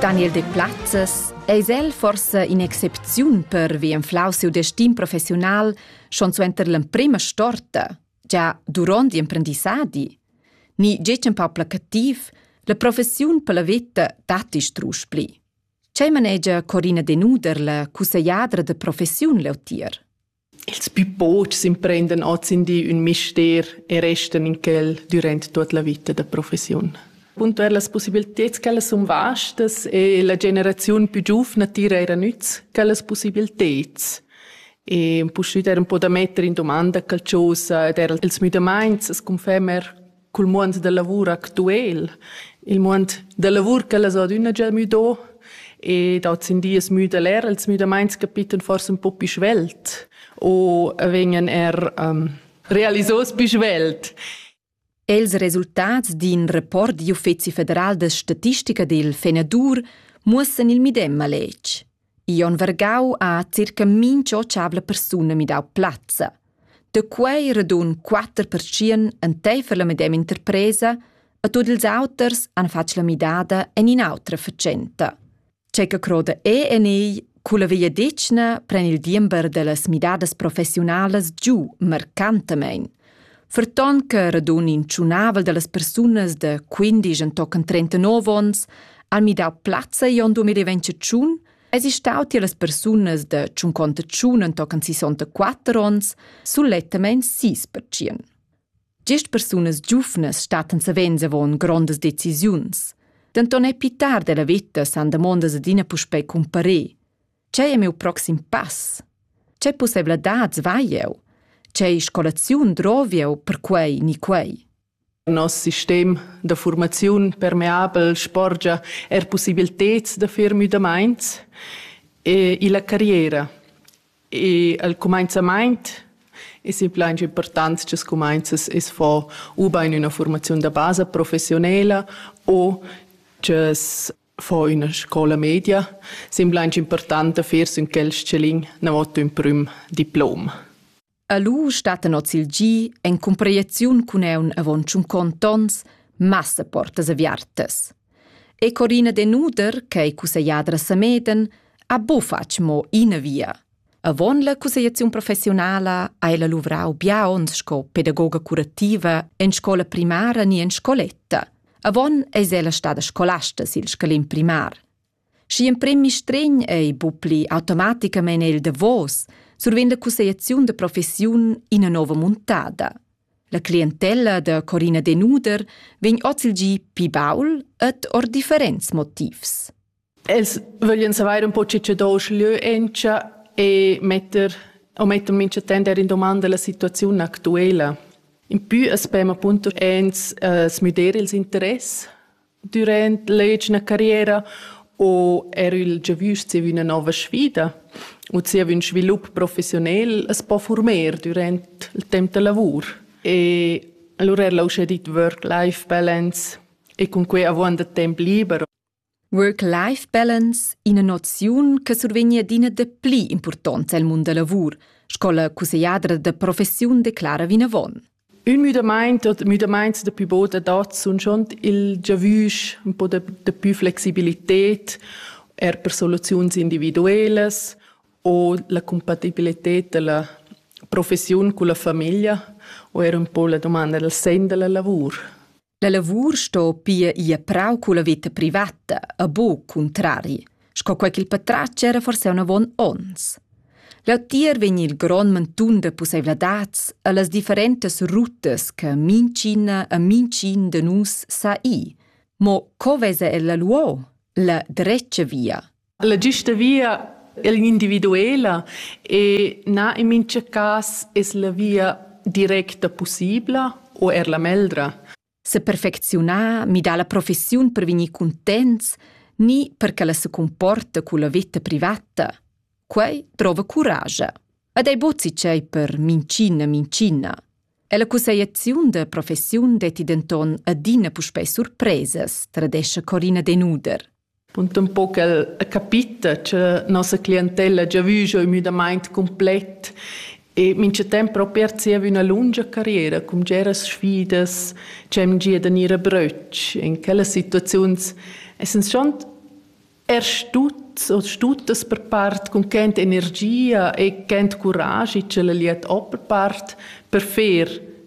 Daniel Deplazes eis el forsa in'excepziun pervi enflau siu destin professiunal schon suenter l'emprema storta, già duront l'imprendissadi. Ni getg empau placativ, la professiun per la veta datti strusch pli. Ce manegia Corina Denuder, la cussaiadra de professiun leutier? Ils pü pochs imprendan oz in di ün mister e restan in quel dürant tuot la vita da professiun. Puntuer las possibilteds ch'ellas sun vastas e la generaziun pü giuvna tira eir a nüz quellas possibilteds. E puspü der un po da metter in domanda qualchosa ed eir als müdamaints as confermer cul muond da lavur actuel, il muond da lavur ch'ellas ha adüna già müdo e dats in dies müda'l eir als müdamaints capittan forsa ün po pü svelt o vegnan eir um, realisos pü svelt. Els resultats d'in report d'uffizi federal da statistica dil Fenadur muossan il medem maletg. I on vargau a circa mincha otschavla persuna midau plazza. Da quei radun quatter pertschien enteifer la medema interpresa e tut ils auters han fatg la midada en in'autra facenta. C'è che croda e en ei Culla vegliadetgna pren il diember dellas midadas professionalas giu marcantamein. Ferton che radun in tschunavel dallas persunas da quindisch entochen trentanov onns han midau plazza igl 2021, eisi stau tier las persunas da tschunconta tschun entochen sisontaquatter onns sulettamein sis pertschien. Gest persunas giuvnas stattan savens avon grondas decisiuns. Denton è pitar della veta san damondas adina puspei cumparer. Tgei è miu proxim pass? Tgei pussevladads vai jeu? Tgei scolaziun drovi'jeu per quei ni quei? Noss sistem da formaziun permeabel sporgia er pussibilteds da fer müdamaints e illa carriera. E al cumainzamaint es implains importants cha scumainzas es fo ubain üna formaziun da basa professionela o ch'as fo üna scoula media. Sembla aint important da fer sün quel s-chalin namotto ün prüm diplom. E lu stattan oz il gi en cumprieziun cun eun avon tschuncont ons massa portas aviartas. E Corina Denuder, che ei cusseggliadra Sameden, ha bufatg mo ina via. Avon la cussegliaziun professiunala hai la luvrau bia onns sco pedagoga curativa en scola primara ni en scoletta. Avon eis ella stada scolasta sil scalin primar. Schi emprem mistregn ei bu pli automaticamein il davos, survegn la cussegliaziun da professiun ina nova muntada. La clientella da Corina Denuder vegn oz il gi pi baul ed or differents motivs. Els vöglian savair un po che che do uschlö encha e metter o metter mincha temp eir in domanda la situaziun actuela. Impü as spema appunto e'ns uh, smüder ils interess dürant l'egina carriera o er il giavüsch zieva üna nouva sfida u zieva ün svilup professionel as po former dürant il temp da lavur. E allura er l'uschè dit Work-Life-Balance e cun que avuonda temp liber. Work-Life Balance ina noziun che survegn adina dapli impurtonza el mund da lavur, sco la cussegliadra da professiun declara vinavon. Ün müdamaint oder müdamaints da pü bod adat sun schon il giavüsch un po da, da pü flexibilität er per soluziuns individuelas o la compatibilität da la professiun cun la famiglia o er un po la domanda dal sen da la lavur. La lavur sto pia ir prau culla veta privata e buc cuntrari, sco quei ch'il patratg era forse avon onns. Leutier vegn il grond mantun da pusseivladads e las differentas rutas che mincina e mincin de nus sa i. Mo co vesa ella luo la drecia via? La giusta via è l'individuela e na in mintga cas es la via directa pussibla o er la meldra. Se perfecziunar, midar la professiun per vegnir contents, ni perché la se comporta con la vita privata. Quei trova courage. Ed ei bozzi cei per mincina mincina. E la cusseiaziun da professiun detti denton adina puspei surpresas, tradesce Corina Denuder. Punt un po ch'el ha capita cha nossa clientella ha già vü giò ün müdamaint cumplet e mincha temp propi er zieva üna lungia carriera cun bgeras sfidas dschem gia da gnir a brötsch. In quellas situaziuns essans schont er stut o stutas per part cun ch'ent energia e ch'ent curaschi ch'ella liet o per part per fer